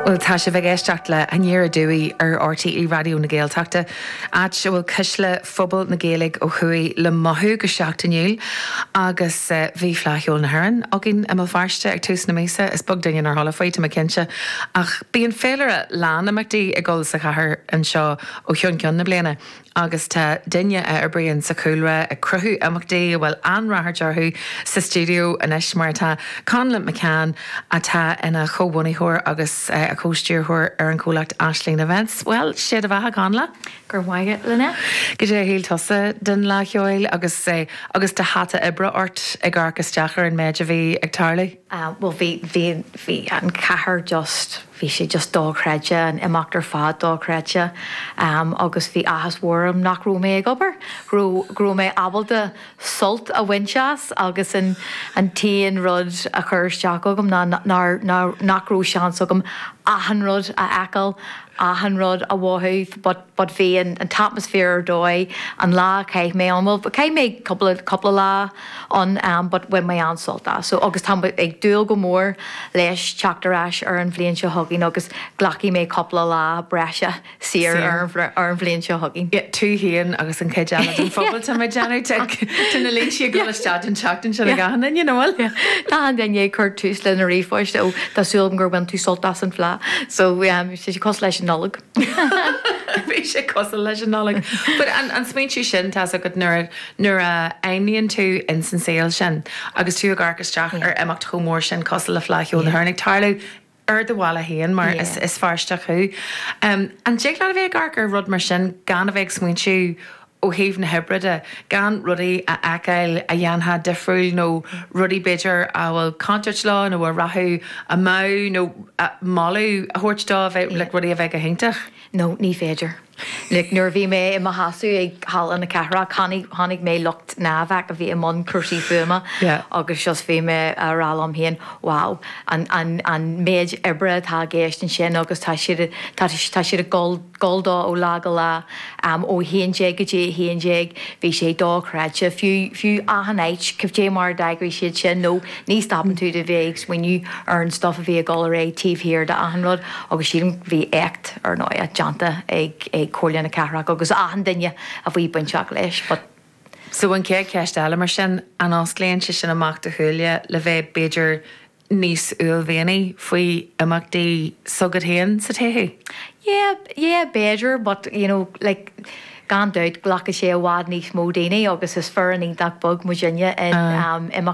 Bhuel, tá sibh ag éisteacht le hAnoir Aduaidh ar RTÉ Raidió na Gaeltachta, áit a bhfuil cuisle phobal na Gaeilge ó thuaidh le mothú go seachtainiúil agus bhí Fleadh Cheoil na hÉireann againn i mBéal Feirste ag tús na míosa. Is beag duine nár chuala faoi, tá mé cinnte, ach bíonn féilire lán d'imeachtaí ag dul sa chathair anseo ó cheann ceann na bliana. agus tá duine a oibríonn sa chúlra ag cruthú imeachtaí, a bhfuil an-ráchairt orthu, sa stiúideo anois, mar atá Connla McCann, atá ina chomhbhunaitheoir agus a chomhstiúrthóir ar an chomhlacht Aisling Events. Bhuel, sé do bheatha, Connla! Go raibh maith agat, Lynette. Cad é a shíl tusa den Fhleadh Cheoil agus agus do hata oibre ort ag amharc isteach ar an méid a bhí ag tarlú? Ahh, bhuel bhí, bhí, bhí an chathair just, bhí sé just dochreidte, an imeacht ar fad dochreidte. Ahh agus bhí áthas mhór orm nach raibh mé ag obair, go raibh, go raibh mé ábalta sult a bhaint as agus an, an t-aon rud a chuir isteach agam ná nár, nár, nach raibh seans agam achan rud a fheiceáil, achan rud a mhothú but, but bhí an t-atmaisféar ar dóigh an lá a chaith mé ann, bhuel chaith mé cúpla, cúpla lá ann em but bhain mé an-sult as so agus tá muid ag dúil go mór leis teacht ar ais ar an bhliain seo chugainn agus glacfaidh mé cúpla lá breise saor ar an, ar an bhliain seo chugainn. Yeah, tú fhéin agus an chuid eile den phobal tá mé ag déanamh tic, tá na laethanta ag dul isteach an tseachtain seo ag achan duine, an bhfuil? Yeah, tá achan duine ag cur tús le na ríomhphoist, ó tá súil agam gur bhain tú sult as an Fleadh so em, tá sé cosúil leis an Nollaig. Bhí sé cosúil leis an Nollaig. But an smaointiú sin, tá a fhios agat, nuair a, nuair a oibríonn tú ins an saol sin agus tú ag amharc isteach ar imeacht chomh mór sin cosúil le Fleadh Cheoil na hÉireann ag tarlú ar do bhaile féin mar is, is Feirsteach thú. An dtig leat a bheith ag amharc ar rud mar sin gan a bheith ag smaointiú ó thaobh na hoibre de, gan rudaí a fheiceáil a dhéanfá difriúil nó rudaí, b'fhéidir, a bhfuil contúirt leo nó a rachadh amú nó moladh a thabhairt dó, a bheith, like, rudaí a bheith go hiontach. No, ní féidir. Like, nuair a bhí mé i mo sheasamh ag Halla na Cathrach, chonaic, chonaic mé lucht Niavac a bhí i mbun cúrsaí fuaime Yeah. agus just bhí mé a rá liom féin, wow, an, an, an méid oibre atá i gceist ansin agus tá siad, tá siad ag dul, dul dó ó lá go lá, ó a haon déag go dtí a haon déag, bhí sé dochreidte, fiú, fiú achan áit, cad é mar a d'eagraigh siad sin nó ní stopann tú de bheith ag smaoineamh ar an stuff a bhí ag dul ar aghaidh taobh thiar de achan rud agus sílim go, bhí éacht, ar ndóighe, déanta ag, ag Comhairle na Cathrach agus achan duine a bhí bainteach leis but. So an chéad cheist eile mar sin, an osclaíonn sé sin amach do shúile le bheith b'fhéidir níos uaillmhianaí faoi imeachtaí s'agat féin sa todhchaí? Yeah, yeah, b'fhéidir, but you know, like, gan dabht, glacfaidh sé i bhfad níos mó daoine agus is foireann iontach beag muidinne in imeachtaí.